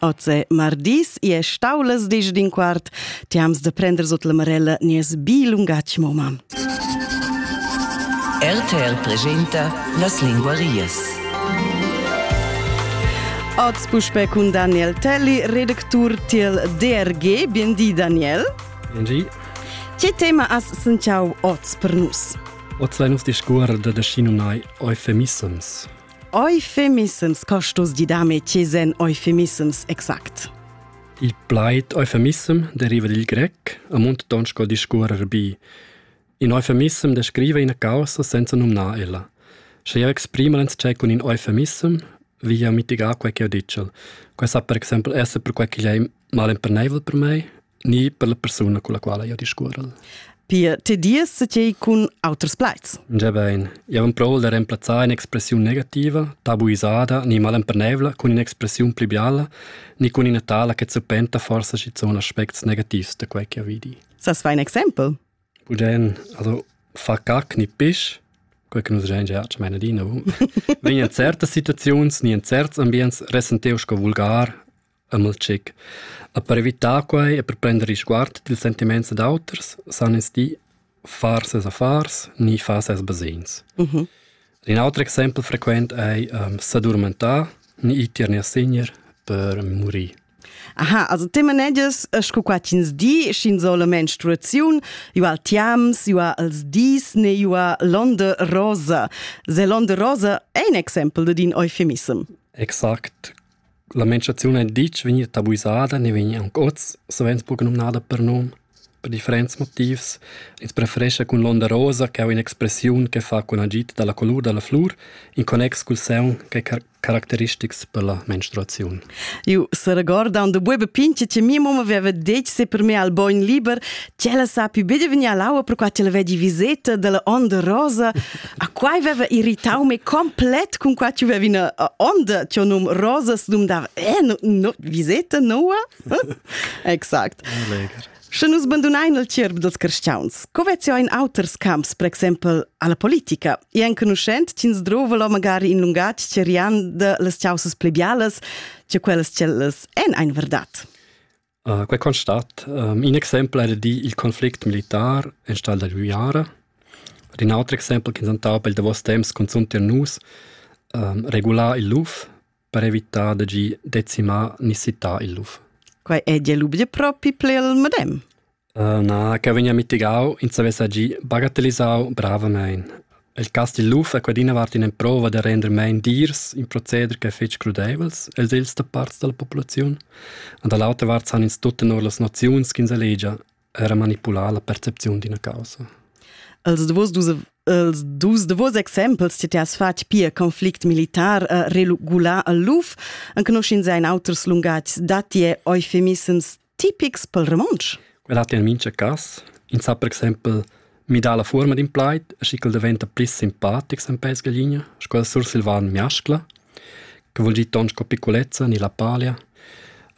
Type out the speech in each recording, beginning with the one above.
Oze mardis e staulas disch din quart, tiams de prender sot la marella nies bi lungatg moma. RTL presenta las linguarias. Oz puspe cun Daniel Telli, redactur tiel DRG. Biendi Daniel. Biendi. Ce tema as sentiau oz per nus? Oz vei nus discuor de descinunai eufemissems. Euphemissems costos di dame chiesen euphemissems exact. Il plaid eufemissem deriva dil grec amunt tonsko discuorer bi. In eufemissem descriva ina causa senza numnar ella. Sche jeu exprima l'entschei cun in eufemissem, vi jeu mitigar quei che ho ditg. Quei sa per exempel esser per quei che ei mal emperneivel per mei ni per la persuna con la quale io discuorel. Pia, te dies tgei cun auters plaids? Già bene. Io non provo da remplazzare un'espressione negativa, tabuisata, ni malempernevla con un'espressione più bialla, ni con una tala che suppenta forse ci sono aspecti negativi da quel che io vidi. Sas fai un exempel? Bugen, also fa cac ni pisch, quel che nus gen già ci meine di, no? Wenn in certe Situations ni in certs ambients resenteo sco vulgar Amel Tschec. E per evitar quai e per prender risguard dils sentiments dad auters san ins di far ses affars ni far ses basegns. Mm -hmm. In altro exempel frequent è um, s'addormentar ni itier ni assegner per morire. Aha, also tema neges sco qua ins di, schin sola menstruaziun, ua al tiams, ua als dis, ne ua l'onde rosa. Se l'onde rosa è un exempel de din eufemism. Exakt, La menstruaziun ei ditg vegnida tabuisada ni vegn aunc oz, savens buca numnada per num. Per differents motivs. Ins preferescha cun l'onda rosa ch'ei in'expressiun che fa cun agid dalla colur dalla flur in connex cul saun ch'ei car caracteristics per la menstruaziun. Eu seregordan do buebe pinche che mia mamma aveva detto se per me al bogn liber, che ella sa più bene venir all'aua per quai che la vedi viseta della onda rosa. A quai veva irritau me complet cun qua tu vevi ina onda tio num rosas dum da eh no, no viseta noa exact Sche nus bandunain il tierb dels cristians, co vezio in auters camps, per exempel alla politica, e enconuschent tins drove lo magari in lungatg cerian de les ciauses plebiales, tio quellas cellas en ein verdat. Uh, quei constat. Um, in exempel era di il conflict militar en stal da Luiara. Ed in auter exempel che insentava il davos temps cunzunt er nus um, regular il luf per evitare de gi decimar ni cità il luf. Quei è di lub de propi ple al medem. Na, ch'el vegnia mitigau, ins havess agì bagatellisau bravamein. Il casti luf ha quadina vart in'emprova da render mein dirs in proceder ch'è fetg crudeivels els els da parts dalla populaziun. Und da l'autra vart san ins tut tenor las noziuns ch'ins elegia era manipular la percepziun d'ina causa. Els davos dus els dus davos exempels ti has fatg pia conflict militar uh, regular al luf, anche noscin sein auters lungatgs datti eufemissems tipics pel romontsch? Quel hat in mincha cas. In sa per exempel midar la forma d'in plaid e schi ch'el diventa pli simpatic sen pels gaglina, sco il sursilvan miascla, che vuol dir ton sco piccolezza ni la palia,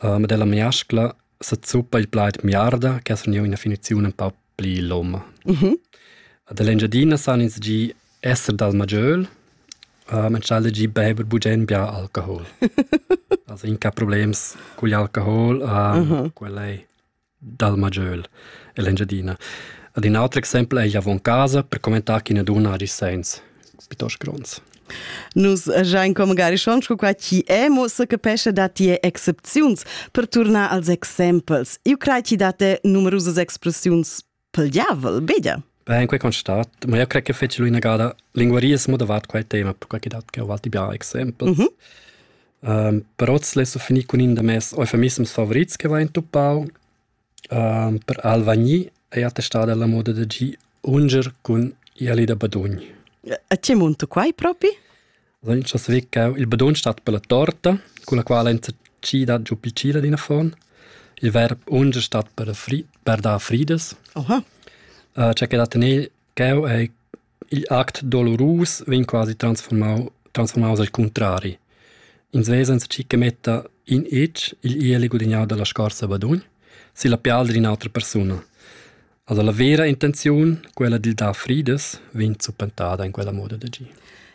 uh, ma della miascla se zuppa il plaid miarda, che ha surniu ina finizione un pau pli lom. Mm -hmm. Dall'Engiadina san ins gi esser dal maggiöl, uh, men schal gi beber bugen bia alcohol. also in ca problems cugl alcohol, uh, mm -hmm. quella è dal maggiöl e l'Engiadina. Ad un altro exempel è avon casa per commentare che ne duna agi sens. piuttosto gronds. Nus giain come Garischon sco qua chi è, mo se capesce da tie excepziuns per tornar als exempels. Io crei ti da te numerusas expressiuns pel diavel, beda. Beh, in quei constat, ma io crei che feci lui nagada linguaries modavat quai tema, perché che dat che ho alti bia exempels. Mm -hmm. Um, però le so finì con in da mes eufemisms favorits che va in tuppau, Per alvagni ei attestada la moda da gir unger cun ieli da badugn. E tgi munta quei propi? Dunque as vi ch'eu il badugn stat per la torta, cun la quala enzatgida giu picila d'in affon. Il verb unger stat per fri per dar fridas. Oha. Tge che da tener ch'eu ei Igl act dolurus vegn quasi transfurmau transfurmaus al cuntrari. Ins vesa enzatgi che metta in etg igl ieli gudignau dalla scorsa badugn silla pial d'ina autra persuna. Also la vera intenziun, quella dil dar fridas, vegn zuppentada in quella moda d'agir.